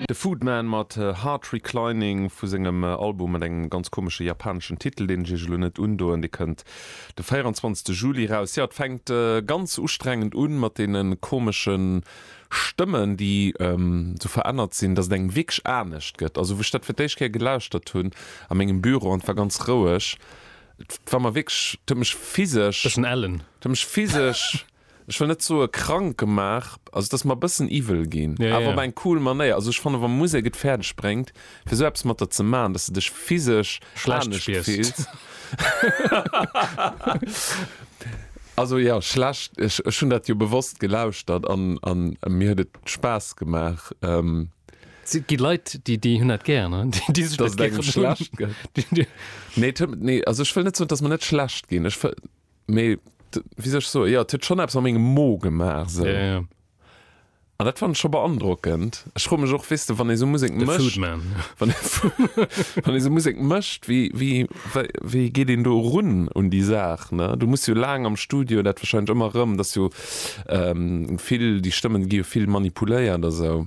De Foodman mat Heart Reclining vu sengem Album mat engem ganz komesche japaneschen Titel, deen ech iech elo net undoen. Dee kënnt de 24 Juli eraus. Jo, et fänkt ganz ustrengend un mat deene komesche Stëmmen, déi esou verännert sinn, dass et engem wierklech anescht gëtt. Also wou ech dat fir d'éischt Kéier gelauschtert hunn a mengem Büro an et war ganz roueg, et war mer wierklech, et huet mech physesch, et huet mech physesch. ech wëll net soe krank gemaach, also et ass mer e bëssen iwwel ginn, awer op eng cool Manéier. Also ech fannen, wa Musek et fäerdeg bréngt, fir esou eppes mat der ze maachen, datt s de dech physesch anescht fills, also jo, schlecht, ech hunn dat jo bewosst gelauschtert a mir huet et Spaass gemaach. Et gi Leit, déi hunn dat gär, déi sech dat gär un. Datt et engem schlecht gëtt? Nee, also ech wëll net soen, et ass mer net schlecht ginn. Mee wéi sech so ja huet schon eppes a mengem Mo gemaach se an dat fand scho beandrockend. Ech fro mech och weste wann ee sou Musek mécht wann ee sou Musek mécht wéi wéi wéi geet een do erun un déi Saach ne? Du muss jo laang am Studio dat wahrscheinlech ëmmer erëm, dat ass jo vill déi Stëmmen gi jo vill manipuléiert a sou.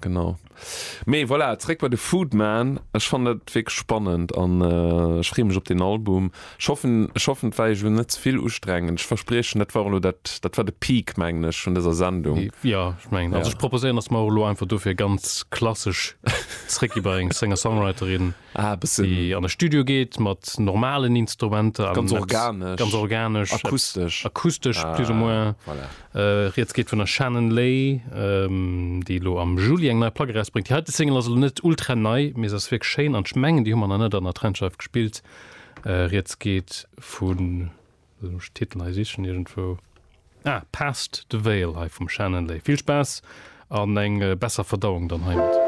Genau. Mee voilà, zréck bei de Foodman. Ech fannen dat wierklech spannend an ech freeë mech op deen Album. Ech hoffen, ech hoffen, et war iech elo net ze vill ustrengend. Ech verspriechen, dat war elo dat, dat war de Peak, mengen ech, vun dëser Sendung. Jo, ech mengen. Also ech proposéieren, datt mer och elo einfach dofir ganz klassesch zréckgi bei eng Singer-Songwriterin. déi an e Studio geet mat normalen Instrumenter, ganz organesch, akustesch plus ou moins. Rieds geet vun der Shannon Lay, déi elo am Juli eng nei Plack erausbréngt. Déi heite Single ass elo net ultra nei, mee se ass wierklech schéin an ech mengen, déi hu mer nach net an der Trendscheif gespillt. Rieds geet vun, elo muss ech de Titel hei sichen iergendwou, ah, Past the Veil hei vum Shannon Lay. Vill Spaass an eng besser Verdauung dann heimat.